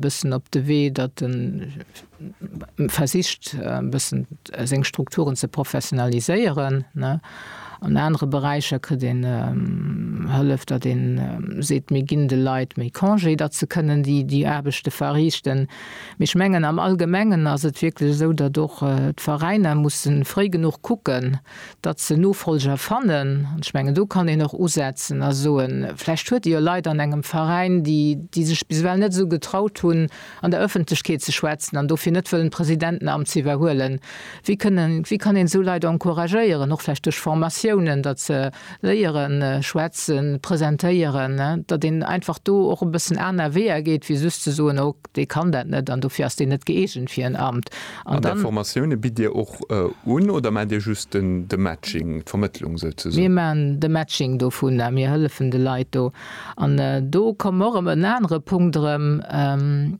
Bëssen op de Wee, datt en versicht e bëssen seng Strukturen ze professionaliséieren. An anere Beräicher kritt een Hëllef, datt ee seet, mir ginn de Leit méi Congé, datt se kënnen déi Aarbechte verriichten. Mee ech mengen am Allgemengen ass et wierklech esou, datt och d'Veräiner musse fréi genuch kucken, datt se Nofolger fannen, an ech mengen do kann een och usetzen a soen, vläicht huet Dir jo Leit an engem Veräin, déi déi sech bis ewell net esou getraut hunn an der Ëffentlechkeet ze schwätzen an dofir net wëllen d'Presidentenamt ze iwwerhuelen. Wéi kënnen, wéi kann een esou Leit encouragéieren, och vläicht duerch Formatiounen, datt se Léieren, schwätzen, presentéieren, datt een einfach do och e bëssen aner Weeër geet, wéi just ze soen, oh, dee kann dat net an dofir ass deen net gëeegent fir en Amt. An där Formatioune bitt Dir och un oder maacht Dir just de Matching, d'Vermëttlung souzesoen? Mir maachen de Matching dovun a mir hëllefen de Leit do. An do kommen mer och ëm en anere Punkt erëm.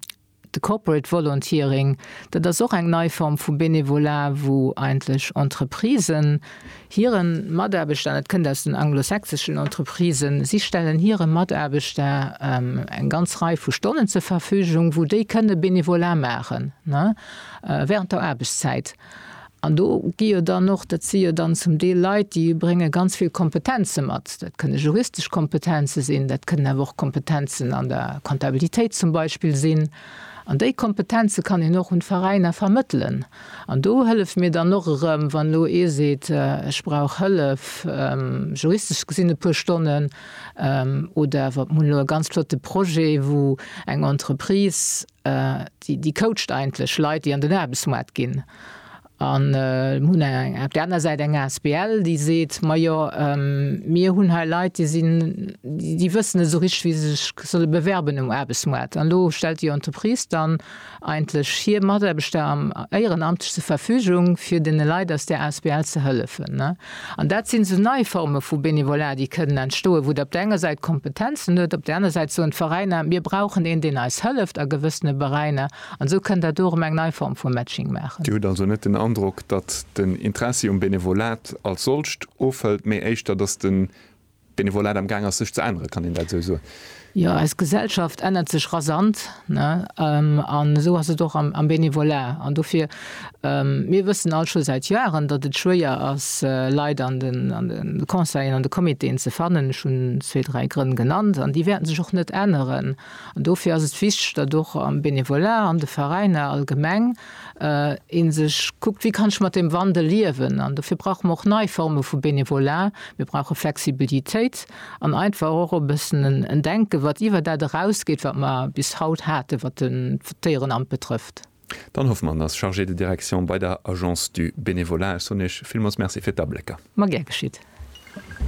De Corporate Volunteering, dat ass och eng nei Form vu Bénévolat, wou eigentlech Entreprisen hire Mataarbechter, an dat kënnt aus den anglosächseschen Entreprisen, si stellen hire Mataarbechter eng ganz Rei vu Stonnen zur Verfügung, wou déi kënne Bénévolat maachen während der Aarbechtszäit. An do gi jo dann och, dat si jo dann zum Deel Leit, déi brénge ganz vill Kompetenze mat. Dat kënne juristesch Kompetenze sinn, dat kënnen awer och Kompetenzen an der Kontabilitéit zum Beispill sinn. An déi Kompetenze kann een och un d'Veräiner vermëttelen. An do hëllef mir dann och erëm, wann elo ee seet, ech brauch Hëllef, juristesch gesinn e puer Stonnen, oder awer mir hunn elo e ganz flotte Projet, wou eng Entreprise, Déi coacht eigentlech Leit, déi an den Aarbechtsmoart ginn. An mir hunn op där aner Säit eng Asbl, déi seet, Majo mir hunn hei Leit, déi sinn, déi wëssen net esou richteg, wéi se sech solle bewerben um Aarbechtsmoart. An elo stellt déi Entreprise dann eigentlech hir Mataarbechter éierenamtlech zur Verfügung, fir deene Leit aus där Asbl ze hëllefen. An dat sinn esou nei Forme vu Bénévolat, déi kënnen entstoen, wou Der op der enger Säit Kompetenzen hutt, op der aner Säit soen d'Veräiner, mir brauchen een, deen eis hëlleft a gewëssene Beräiner. An esou kënnt Der do erëm eng nei Form vu Matching maachen. Dir hutt also net den Androck, datt den Interessi um Bénévolat als solcht ofhëlt, mee éischter, datt den Benevolat am gaang ass sech ze änneren, kann een dat esou soen? Jo, eis Gesellschaft ännert sech rasant, an esou ass et och am Benevolat. An dofir, mir wëssen all scho säit Joaren, datt et schwéier ass Leit an de Conseillen, an de Comitéen ze fannen. Ech hunn zwee, dräi Grënn genannt, an déi wäerten sech och net änneren. An dofir ass et wichteg, datt och am Bénévolat, an de Veräiner allgemeng ee sech kuckt, wéi kann ech mat deem Wandel liewen. An dofir brauche mer och nei Forme vu Bénévolat. Mir brauche Flexibilitéit an einfach och e bëssen en Denken, wat iwwer dat erausgeet, wat mer bis haut haten, wat d'Déierenamt betrëfft. Dan Hoffmann ass Chargé de direction bei der Agence du Bénévolat. Ech soen Iech villmools Merci fir d'Ablécker. Ma gär geschitt.